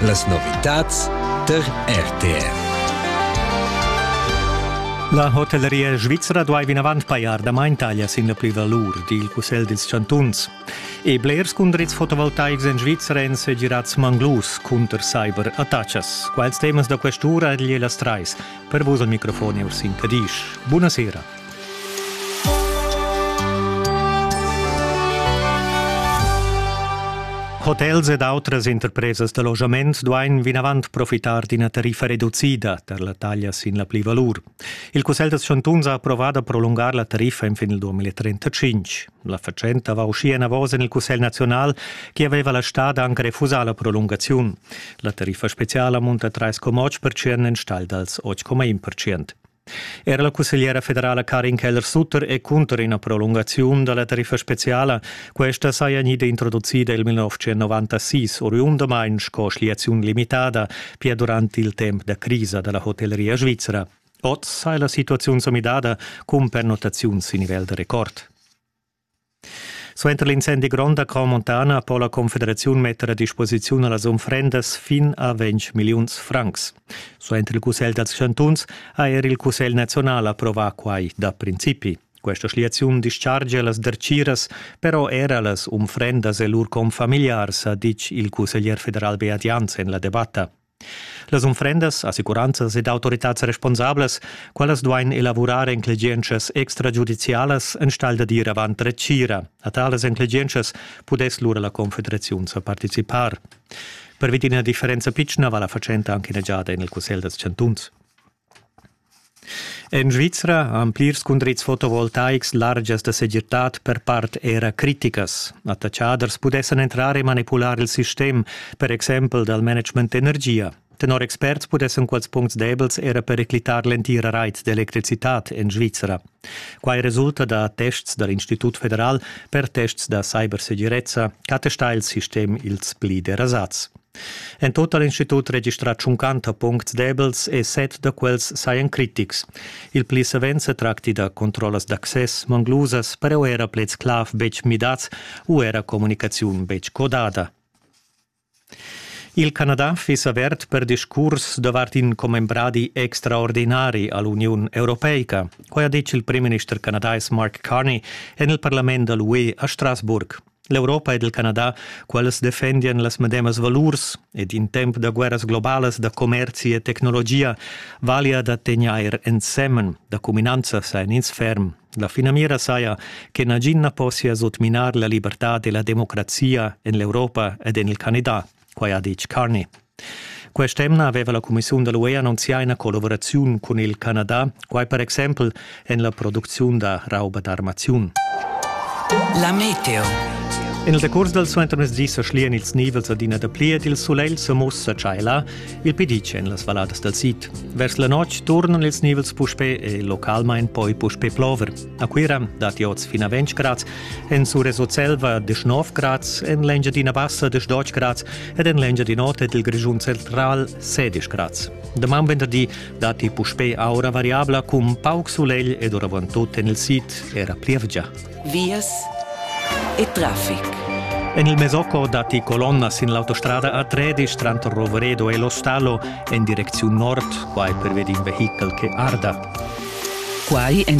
Las novitads tar RTR. La hotelleria svizra duai vinavant pajar damain taglias sin la plivalur, di il cussegl dils chantuns. E blers cundrits fotovoltaics en Svizra èn segirads manglus cunter cyberattacas. Quels temas da quest'ura egli las trais. Per vus al microfon Ursin Cadisch. Buona sera. Hotels ed outras interpresas da logiament duain vinavant profitar d'ina tariffa reducida tar la taglia sin la plivalur. Il Cussegl da chantuns ha approvà da prolungar la tariffa fin il 2035. La fatschenta va uschia enavos en il Cussegl naziunal che aveva la stad anc refusà la prolungaziun. La tariffa speziala munta 3,8% enstagl dals 8,1%. Era la cussegliera federala Karin Keller-Sutter è cunter ina prolungaziun da la tariffa speziala. Questa saja gnida introducida il 1996, oriundamain sco schliaziun limitada, pia durant il temp da crisa da la hotelleria svizra. Oz sai la situaziun sa midada cun pernottaziuns sin nivel da rekord. Suenter l'incendi grond a Crau Montana po la Confederaziun metter a disposiziun las unfrendas fin a 20 milliuns francs. Suenter il Cussegl dals chantuns ha er il Cussegl nazional approvà quai da principi. Questa schliaziun dischargia las dertgiras però era las unfrendas e lur confamiliars, ha ditg il cusseglier federal Beat Jans en la debatta. Las unfrendas, assicuranzas ed autoritads responsablas, quellas duain elavurar enclegientschas extragiudizialas enstagl da dir avant retgira. A talas enclegientschas pudess lura la Confederaziun sa participar. Per vid ina differenza pitschna va la fatschenta anche ina giada en il Cussegl dals chantuns. En Svizra han plirs cundrits fotovoltaics largias da segirtad per part era criticas. Attatschaders pudessan entrar e manipular il sistem, per exempel dal management d'energia. Tenor experts pudessan quels puncts debels era periclitar l'entira rait d'electricitad en Svizra. Quai resulta da tests dal Institut federal per tests da cybersegirezza ch'attesta il sistem ils pli derasats. En tut ha l'institut registrà tschuncanta puncts debels e set da quels sajan critics. Il pli savens se tracti da controllas d'access manglusas, però era pleds clav betg midads u era comunicaziun betg codada. Il Canada fiss avert per discurs davart in commembradi extraordinari all'Uniun Europeica. Quai ha ditg il primminister canadais Mark Carney en il parlament da l'UE a Strasburg. L'Europa ed il Canada, quels defendian las medemas valurs ed in temp da guerras globalas da commerzi e tecnologia valia da tegnair ensemen, da cuminanza sain ins ferm. La finamira saja che nagin na possia sutminar la libertad e la democrazia en l'Europa ed en il Canada, quai ha ditg Carney. Quest'emna aveva la cumissiun da l'UE annunzià ina collaboraziun cun il Canada, quai per exempel en la producziun da rauba d'armaziun. La meteo. En il decurs dal suentermezdi sa schlian ils nivels adina dapli ed il sulegl sa mussa tschaiला il pedice en las valladas dal sid. Vers la notg turnan ils nivels puspè e localmain poi puspè plover. A Cuira datti oz fin a 20 grads, en Surreso Selva desch 9 grads, en l'Engiadina Bassa desch 10 grads ed en l'Engiadin'Ota ed il Grischun Central 16 grads. Daman venderdi datti puspè aura variabla cun pauc sulegl ed oravantut en il sid era plievgia. Vias e traffic. En il Mesocco datti colonnas sin l'autostrada A13 tranter Roveredo e Lo Stallo en direcziun nord, quai pervedi in vehichel che arda. Quai en